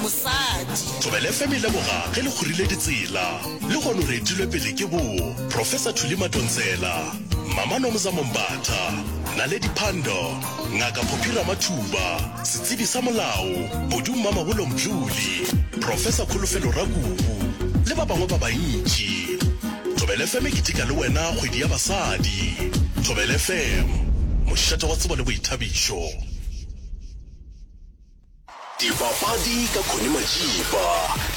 mosadi. Thobela FM e leboga ge le kgorile ditsela. Lehono re etilwe pele ke bo Professor Thuli Matontsela, Mama Nomza Mombatha, Naledi Pandor, Ngaka Phophi Ramathuba, Setsebi sa Molao, Bodu Mmamabolo Mdluli, Professor Kholofelo Rakubu le ba bangwe ba bantši. Thobela FM e keteka le wena kgwedi ya basadi. Thobela FM, mošate wa tsebo le boithabišo. Dipapadi ka Connie Majiba,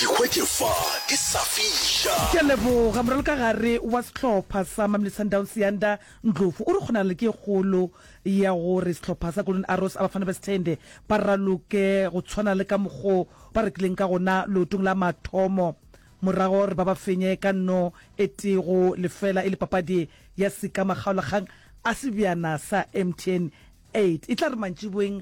di hwetše fa di sa fiša. Ke a leboga. Moralokagare wa sehlopha sa Mamelodi Sundowns, Yanda Ndlovu, o re kgonagalo ke e kgolo ya gore sehlopha sa Golden Arrows, Abafana Bes'thende, ba raloke go tshwana le ka mokgwa o ba rekileng ka gona leotong la mathomo morago ga gore ba ba fenye ka no e tee go lefela e le papadi ya sekamakgaolakgang a sebjana sa MTN 8. E tla re mantšiboeng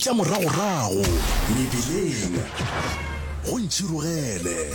Tša moragorago mebileng go ntšhirogele.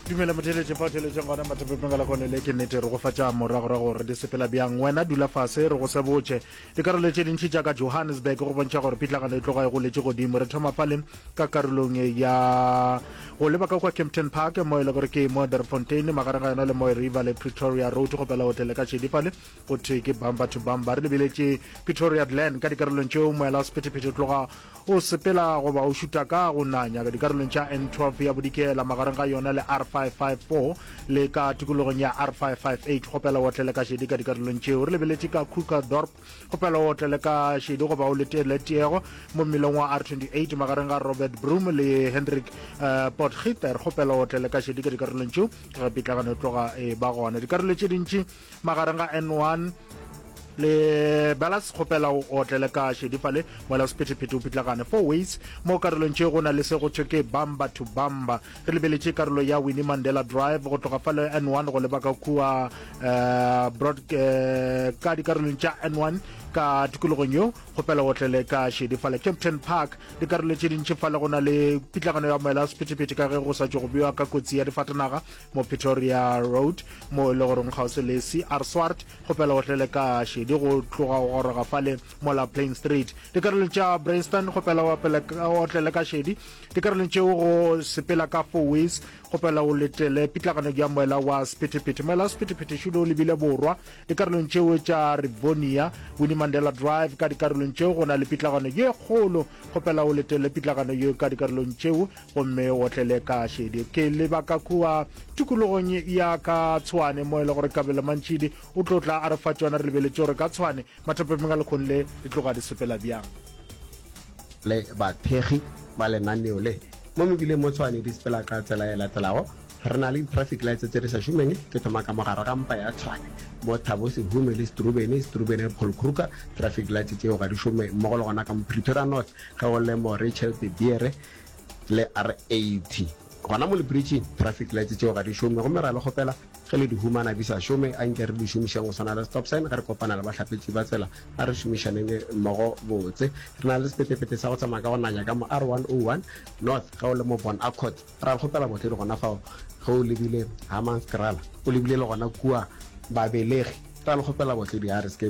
Dumela motheletše fa o theletšeng gona mathapepeng ka lakone le ke nnete re go fa tša moragorago gore di sepela bjang wena dula fase re go se botše dikarolo tše dintši tša ka johannesburg go bontšha gore phitlagano e tloga e goletše godimo re thoma fale ka karolong ya go leba ka kwa campton park mo e le gore ke moderfontein magareng ga yona le moe river le pretoria road go pela hotele ka šedifale Go thwe ke bamba to bamba. Re lebeletše Pretoria Glen ka dikarolong tšeo moela wa sephethephethe o tloga o sepela goba o šuta ka go nanya ka dikarolong tša N12 ya bodikela magareng ga yona le R554 le ka tikologong ya R558 go pela otlele ka šedi ka dikarolong tšeo. Re lebeletše ka Krugersdorp go pela otlele ka šedi goba o letele tiego mo mmileng wa R28 magareng ga Robert Broom le Hendrik uh, eh, Potgieter go pela otlele ka šedi ka dikarolong tšeo. Ga pitlagano e tloga e ba gona dikarolo tše dintši magareng ga n1 le belas kgopela o otlele ka šedi fale mola sephetephete o pitlagane four ways mo karolong tše go na le se go thwe ke bamba to bamba re lebeletše karolo ya winnie mandela drive go tloga fale n1 go leba ka kua uh, broad, uh, ka dikarolong tša n1 ka tikologong yeo kgopela otlele ka šedi fale captain park dikarolo tše dintši fale go na le pitlagano ya moela sephetephete ka ge go sa tšo go bewa ka kotsi ya difatanaga mo Pretoria Road, mo e le goreng kgauswi le CR Swart, kgopela o tle le ka šedi go tloga go goroga fale mola Plain Street. Dikarolong tša Bryanston, kgopela o apele o tle le ka šedi. Dikarolong tšeo go sepela ka four-ways, kgopela o letele pitlagano ya moela wa sephethephethe. Moela wa sephethephethe šulo o lebile borwa, dikarolong tšeo tša Rivonia, Winnie Mandela Drive, ka dikarolong tšeo go na le pitlagano ye kgolo, kgopela o letele pitlagano yeo ka dikarolong tšeo Gomme o tle le ka šedi. Ke leba ka kua tikologong ya ka tshwane, mo e le gore Kabelo Mantšidi o tlo tla a re fa tšona. Re lebeletše gore ka tshwane mathapepeng a lekgong le e tloga di sepela bjang. Le bathekgi ba lenaneo le, mo mebileng mo Tshwane di sepela ka tsela e latelago, Re na le di-traffic lights tše di sa šomeng. Ke thoma ka mo gare ga mpa ya Tshwane, mo Thabo Sehume le Strubeni, Strubeni Paul Kruger. Traffic lights tšeo ga di šome, mmogo le gona ka mo Pretoria North, ge go le mo Rachel De Beere, le R80. Gona mo lipiritšing, traffic lights tšeo ga di šome gomme ra le kgopela ge le di humana di sa šome a nke re di šomišeng go swana le stop sign ge re kopana le bahlapetši ba tsela. A re šomišaneng mmogo botse. Re na le sepetepete sa go tsamaya ka go nanya ka mo R101 North ge o le mo Bon Accord. Ra le kgopela bohlodi gona fao ge o lebile Hammanskraal, o lebile le gona kua Babelegi. Ra le kgopela bohlodi a re se ke